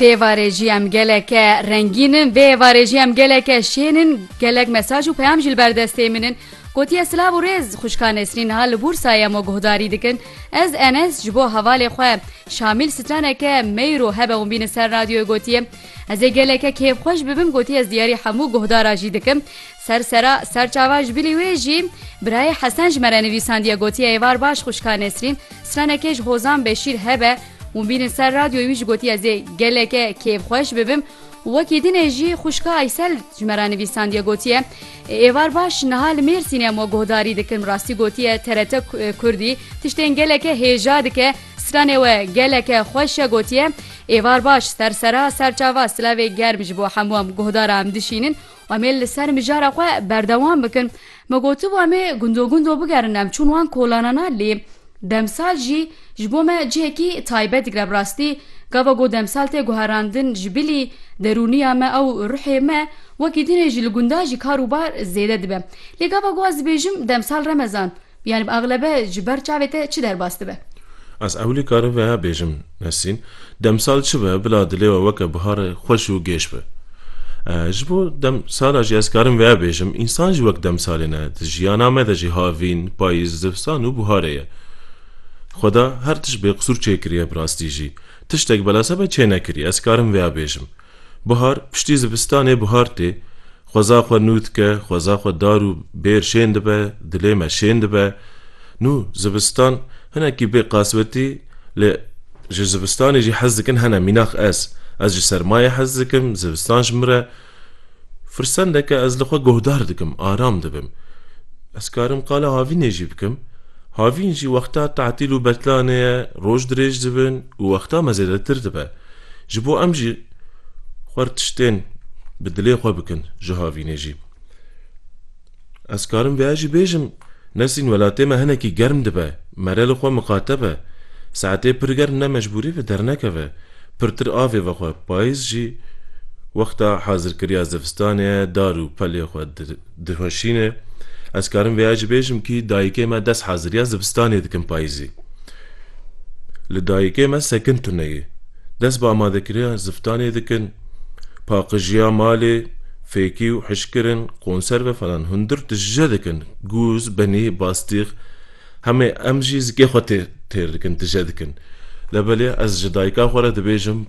Dêvarê jî em geleke rengîn in, vê êvarê jî em geleke şên in, gelek mesaj û peyam jî li ber destê min in. Gotiye silav û rêz xwişka Nesrîn niha li Bûrsayê em we guhdarî dikin. Ez Enes ji bo hevalê xwe Şamîl straneke meyro hebe hûn bînin ser radyoyê gotiye. Ez ê geleke kêfxweş bibim gotiye ez diyarî hemû guhdara jî dikim. Ser sera serçava ji bilî wê jî birayê Hesen ji me re nivîsandiye gotiye êvar baş xwişka Nesrîn stranekê ji Hozan Beşîr hebe û bînin ser radyoyê wî ji gotiye ez ê geleke kêfxweş bibim û wekî dinê jî xwişka Aysel ji me re nivîsandiye gotiye êvar baş niha li Mêrsînê em we guhdarî dikin rastî gotiye TRT Kurdî tiştên geleke hêja dike stranê we geleke xweş e gotiye êvar baş ser sera serçava silavê germ ji bo hemû em guhdara em dişînin û Em ê li ser mijara xwe berdewam bikin. Me gotibû em ê gundo gundo bigerin em çûn wan kolanana lê demsal jî ji bo me cihekî taybet digre bi rastî gava ku demsal tê guherandin ji bilî derûniya me ew ruhê me wekî din e jî li gunda jî kar û bar zêde dibe lê gava ku ez dibêjim demsal remezan Yani bi eglebe ji ber çavê te çi derbas dibe? Ez ewilî karim veha bêjim Nesrîn, demsal çi be bila dilê we weke bihar xweş û gêş be. Ji bo demsala jî ez karim veha bêjim, însan jî wek demsalê ne, di jiyana me de jî havîn, payîz, zivsan û biharê ye. Xweda her tişt bêqisûr çêkiriye bi rastî jî. Tiştek belase be çênekiriye, ez karim veha bêjim. Buhar, piştî zivistanê buhar tê. Xweza xwe nû dike, xweza xwe dar û bêr şên dibe, dilê me şên dibe. Nû, zivistan, hinekî bê qasbetî, lê ji zivistanê jî hez dikin hene, mînax ez. Ez ji sermayê hez dikim, zivistan ji min re firsendeke ez li xwe guhdar dikim, aram dibim. Ez karim qala havînê jî bikim. Havîn jî wexta tatîl û betlanê ye, roj dirêj dibin û wexta me zêdetir dibe. Ji bo em jî xwar tiştên bi dilê xwe bikin ji havînê jî. Ez karim vêya jî bêjim, Nesrîn welatê me hinekî germ dibe, mere li xwe miqate be. Saetê pir germ ne mecbûrî ve dernekeve, pirtir avê vexwe. Payîz jî wexta hazirkiriya zivistanê ye, dar û pelê xwe Dixweşîne, Ez karim vêya jî bêjim kî dayikê me dest haziriya zivistanê dikin payîzî. Li dayikê me sekin tune ye. Dest bi amadekiriya zivtanê dikin. Paqijiya malê, fêkî û hişkirin, konserve falan hundir tije dikin. Gûz, benî, bastîx. Hemê em jî zikê xwe têr dikin, tije dikin. Lebelê ez ji dayika xwe re dibêjim,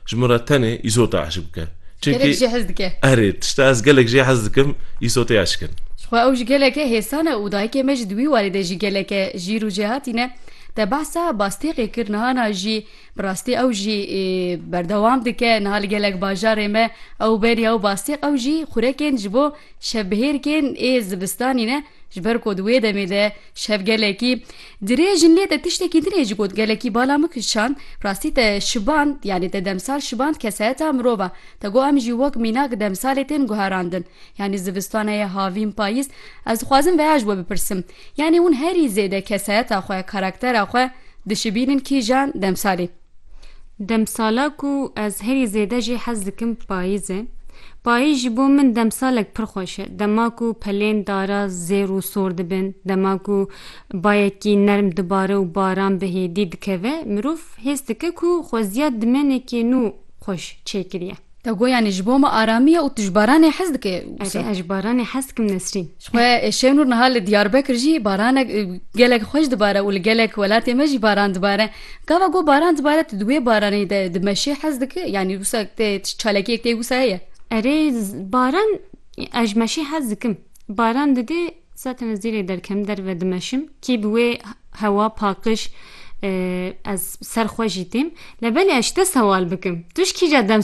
ji min re tenê îsota eşq bike. Gelek jê hez dike. Erê, tişta ez gelek jê hez dikim, îsotê eşq in. Jixwe ew jî gelek e hêsan e û dayikê me ji di wî warê de jî gelek e jîr û jêhatîn e. Te behsa Bastêqê kir niha na jî bi rastî ew jî berdewam dike. Niha li gelek bajarê me ew berî ew bastêq ew jî xurekên ji bo şevbihêrkên ê zivistanî ne. Ji ber ku di wê demê de şev gelekî dirêj in lê te tiştekî dinê ji got gelekî bala min kişand rastî te şiband yanî te demsal şiband kesayeta mirov e te got em jî wek mînak demsalê tên guherandin yanî zivistan heye havîn payîz ez dixwazim veha ji we bipirsim yanî hûn herî zêde kesayeta xwe karaktera xwe dişibînin kîjan demsalê Demsala ku ez herî zêde jî hez dikim payîz e. Payîz ji bo min demsalek pir xweş e. Dema ku pelên dara zêr û sor dibin, dema ku bayekî nerm dibare û baran bi hêdî dikeve, mirov hês dike ku xweziya dimênekê nû xweş çêkiriye. Te got yanî ji bo me aramî ye û tu ji baranê hez dike wisa? Erê ez ji baranê hez dikim Nesrîn. Jixwe Şênûr niha li Diyarbekir jî baranek gelek xweş dibare û li gelek welatê me jî baran dibare. Gava got baran dibare tu di wê baranê de di meşê hez dike yanî wisa te çalakiyek tê wisa heye? Erê baran ez ji meşê hez dikim. Baran didê zaten ez dîrê derkem derve dimeşim kî bi wê hewa pakiş ez ser xwe jî têm. Lebelê ez ji te sewal bikim tu ji kîja dem